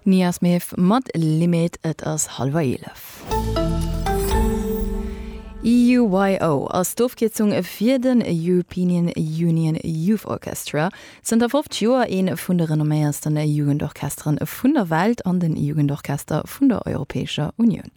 Nia Smith mat Limit. Et ass hallwer eelef. EUYO ass d'Ofkierzung fir den Europeanian Union Youth Orchestra, zënter 50 Joer ee vun de renomméiersten Jugendorchestere vun der Welt an de Jugendorchester vun der Europäescher Unioun.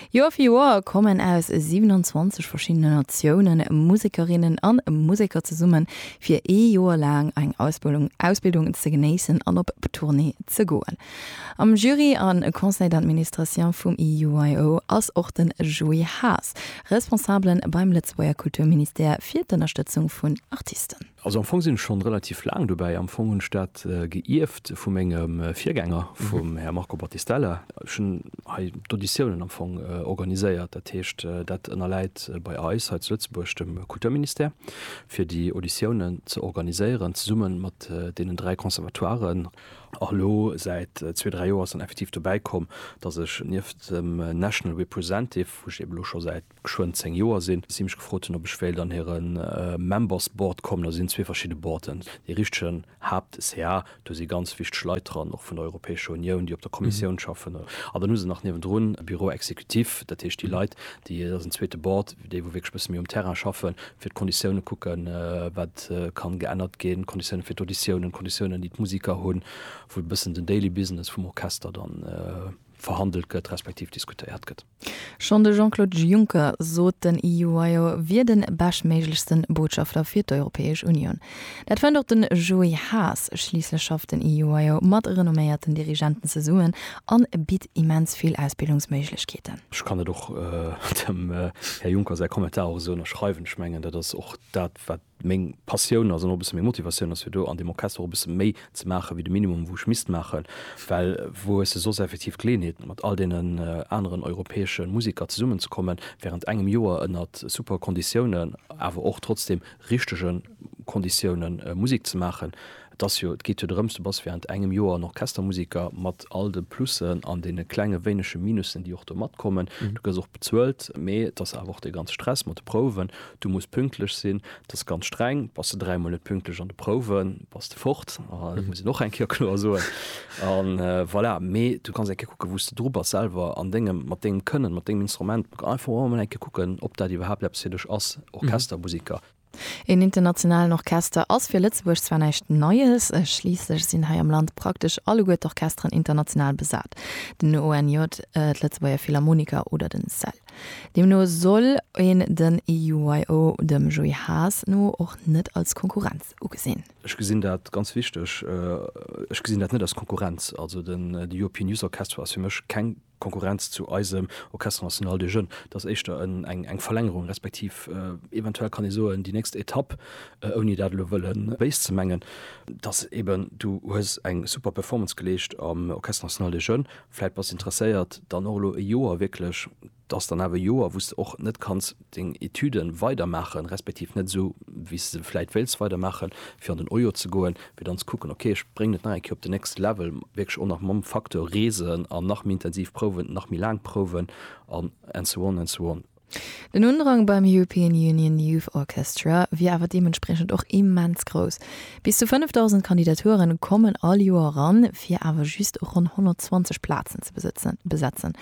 Joer fir Joer kommen aus 27 verschiddenen Natiounen Musekerinnen a Museker zesummen, fir ee Joer laang eng Ausbildung ze genéissen an op Tournée ze goen. Am Jury a Conseil d'Administration vum EUIO ass och de Joé Haas, Responsabele beim Lëtzebuerger Kulturministère fir d'Ënnerstëtzung vun Artisten. Also am Fong sinn ech schonn relativ laang dobäi. Am Fong hunn ech dat geierft vu mengem Virgänger, vum Här Marco Battistella. Ech hunn hei d'Auditiounen am Fong organiséiert. Dat heescht, dat ënnerläit bei eis hei zu Lëtzebuerg dem Kulturministère, fir déi Auditiounen ze organiséieren, zesumme mat deenen dräi Conservatoiren. A elo säit zwee, dräi Joer ass dann effektiv dobäi komm, datt ech nieft dem National Representative, wou ech eeben elo scho säit geschwënn 10 Joer sinn, si mech gefrot hunn, ob ech wéilt an hire Members Board kommen. Also sinn zwee verschidde Boarden. Dee richtegen Haapt-CA, do si ganz wichteg Leit dran, och vun der Europäescher Unioun, déi op der Kommissioun schaffen. A dann hu se nach niewendrun e Bureau exécutif, dat heescht déi Leit, déi, dat ass en zweete Board, déi wou wierklech e bësse méi um Terrain schaffen, fir d'Konditiounen kucken, wat kann geännert ginn, d'Konditiounen fir d'Auditiounen, d'Konditiounen, déi d'Musiker hunn, wou e bëssen den daily business vum Orchester dann verhandelt gëtt, respektiv diskutéiert gëtt. Schonn de Jean-Claude Juncker sot, den Iuaio wier de beschtméiglechste Botschafter fir d'Europäesch Unioun. Dat fënnt och den Joé Haas. Schliisslech schafft den Iuaio mat renomméierten Dirigenten zesummen an bitt immens vill Ausbildungsméiglechkeeten. Ech kann et och dem Här Juncker säi Kommentar och esou ënnerschreiwen. Ech mengen, dat ass och dat, wat meng Passioun ass an och e bësse meng Motivatioun ass fir do an deem Orchester och e bësse méi ze maache wéi de Minimum wou ech misst maachen, well wou hues de soss effektiv d'Geleeënheet mat all deenen aneren europäesche Museker zesummen ze kommen wärend engem Joer ënnert super Konditiounen, awer och trotzdem richtege Konditioune Musek ze maachen. Et ass jo, et geet jo drëms, du bass während engem Joer en Orchestermusiker, mat all de Plussen an deene klenge wéinege Minussen, déi och do matkommen. Du gëss och bezuelt, mee et ass awer och dee ganze Stress mat de Prouwen, du muss pünktlech sinn, et ass ganz streng. Bass de dräimol net pünktlech an de Prouwen, bass de fort, dat muss een och eng Kéier kloer soen. A voilà, mee du kanns eng Kéier kucken, wou s de dru bass selwer an dengem, mat dengem Kënnen, mat dengem Instrument. Einfach och emol eng Kéier kucken, ob dat iwwerhaapt eppes fir dech ass, Orchestermusiker. Een internationalen Orchester ass fir Lëtzebuerg zwar näischt Neies, schliisslech sinn hei am Land praktesch alleguer d'Orchesteren international besat, den ONJ, d'Lëtzebuerger Philharmoniker oder den cell. Deemno soll een den EUYO dem Joé Haas no och net als Konkurrenz ugesinn. Ech gesinn dat ganz wichteg. Ech gesinn dat net als Konkurrenz. Also den European Youth Orchestra ass fir mech keng Konkurrenz zu eisem Orchestre National des Jeunes, et ass éischter eng Verlängerung, respektiv eventuell kann ee soen, déi nächst Etapp, ouni dat elo wëllen béis ze mengen, dass eben du hues eng super Performance geleescht am Orchestre National des Jeunes, vläit bass interesséiert dann och elo e Joer wierklech, et ass dann awer e Joer, wou s de och net kanns. deng Etüde weider maachen, respektiv net esou wéi s de se vläit wéilts weider maachen, fir an den Ojo ze goen, fir dann ze kucken, ok ech bréngen et nach eng Kéier op den next level, wierklech och nach mam Facteur reesen an nach méi intensiv prouwen, nach méi laang prouwen an and so on and so on. Den Undrang beim European Union Youth Orchestra wier awer deementspriechend och immens grouss. Bis zu 5.000 Kandidature kommen all Joer eran, fir awer just ronn 120 Plazen ze besetzen.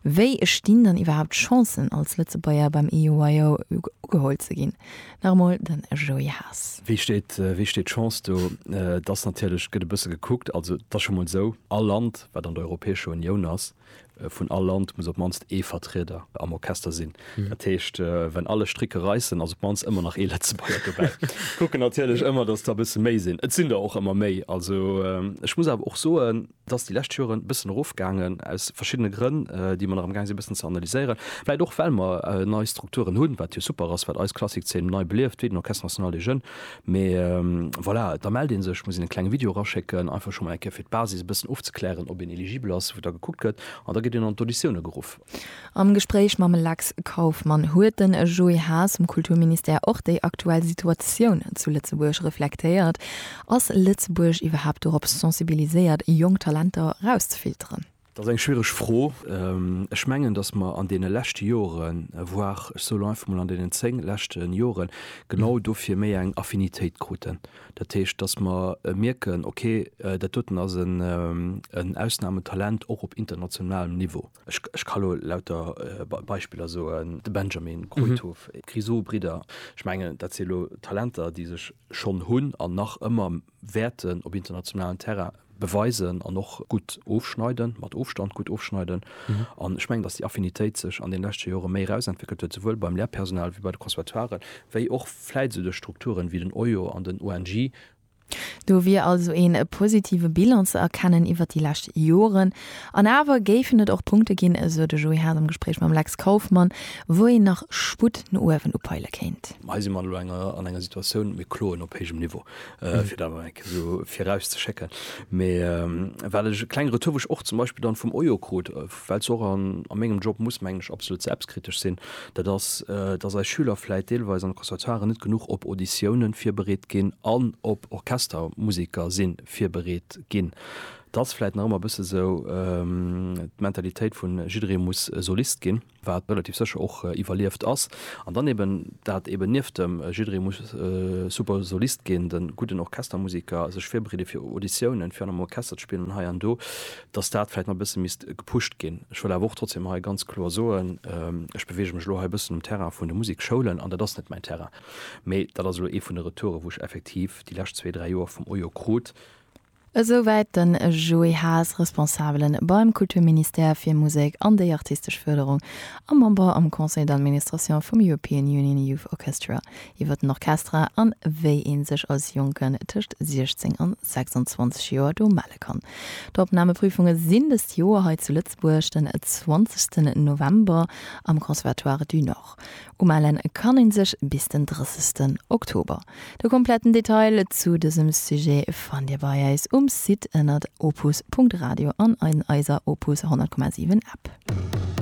Wéi stinn dann iwwerhaapt d'Chancen, als Lëtzebuerger beim EUYO ugeholl ze ginn? Nach emol den Joé Haas. Wéi steet d'Chance do? Et ass natierlech, et gëtt e bësse gekuckt, also et ass scho mol esou, all Land, wat an der Europäescher Unioun ass, Vun all Land muss op d'mannst ee Vertrieder am Orchester sinn. Dat heescht, wenn alle Stricke reissen, ass op d'mannst ëmmer nach ee Lëtzebuerger dobäi. Kucken natierlech ëmmer, dass der e bësse méi sinn. Et sinn der och ëmmer méi. Also ech muss awer och soen, et ass déi lescht Joren e bëssen erofgaangen, aus verschiddene Grënn, déi mer nach amgaang sinn e bëssen ze analyséieren. Vläicht och well mer nei Strukturen hunn, wat jo super ass, wat eis Klassik-Zeen nei belieft, wéi den Orchestre National des Jeunes Mee voilà, da mellt ee sech, muss een e klenge Video eraschécken, einfach scho mol eng Kéier fir d'Basis e bëssen ofzeklären, ob een eligibel ass, wou da gekuckt gëtt an da gëtt een an d'Auditioune geruff. Am Gespréich mam Lex Kauffmann huet de Joé Haas vum Kulturministère och déi aktuell Situatioun zu Lëtzebuerg reflektéiert. Ass Lëtzebuerg iwwerhaapt dorop sensibiliséiert, jonk Talenter erauszefilteren? Dat ass eng schwiereg Fro. Ech mengen, datt mer an deene leschte Joren, voire ech soen elo einfach mol an deenen zéng leschte Joren, genau dofir méi eng Affinitéit kruten. Dat heescht, datt mer mierken, ok, dat doten ass en Ausnahmetalent och op internationalem Niveau. Ech ka elo lauter Beispiller soen, de Benjamin, Kruithof, d'Grisou-Bridder. Ech mengen, dat si elo Talenter, déi sech schonn hunn an nach ëmmer wäerten op internationalen Terrain beweisen an och gutt ofschneiden, mat Ofstand gutt ofschneiden. An ech mengen, datt déi Affinitéit sech an den leschte Jore méi erausentwéckelt huet, souwuel beim Lehrpersonal ewéi bei de Conservatoiren, wéi och vläit esou duerch Strukturen ewéi den OIO an den ONJ. Do wier also een positive Bilan ze erkennen iwwert déi lescht Joren. An awer géifen et och Punkte ginn, esou de Joé Haas am Gespréich mam Lex Kauffmann, wou een nach Sputt no uewen upeile kéint. Hei si mer elo an enger Situatioun, mir kloen op héijem Niveau. Äh, fir dat eng so viraus ze schécken. Mee ähm, well ech e kleng Retour wech och zum Beispiel dann vum Ojo krut, äh, well och an a mengem Job muss mengen ech absolut selbstkritesch sinn, dat ass, äh, datt eis Schüler vläit deelweis an de Conservatoiren net genuch op Auditiounen virbereet ginn an op Orchestermusiker si virbereet ginn. Et ass vläit nach ëmmer e bësse sou ähm, d'Mentalitéit vun jidderee muss Solist ginn. wat relativ sécher och iwwerlieft ass, an dann eben dat eben nieft dem jidderee muss super Solist ginn, de gudden Orchestermusiker, sech virbereede fir Auditiounen, fir an engem Orchester ze spillen an hei an do, datt dat vläicht nach e bësse misst gepusht ginn. Ech wëll awer och trotzdeem hei ganz kloer soen, ech beweege mech elo hei e bëssen um Terrain vun de Musikschoulen an dat ass net mäin Terrain, mee dat ass elo ee vun de Retouren, wou ech effektiv déi lescht zwee, dräi Joer vum OIO krut, Esouwäit den Joé Haas, Responsabele beim Kulturministère fir Musek an déi artistesch Fërderung a Member am Conseil d'administration vum European Union Youth Orchestra, iwwer den Orchestra an wéi ee sech als Jonken tëscht 16 an 26 Joer do melle kann. D'Opnameprüfunge sinn dëst Joer hei zu Lëtzebuerg den 20 November am Conservatoire du Nord. Woch. Umellen kann een sech bis den 30 Oktober. De kompletten Detail zu dësem Sujet fannt dir bei eis um Site ënnert opus.radio an an eiser Opus 100,7 App.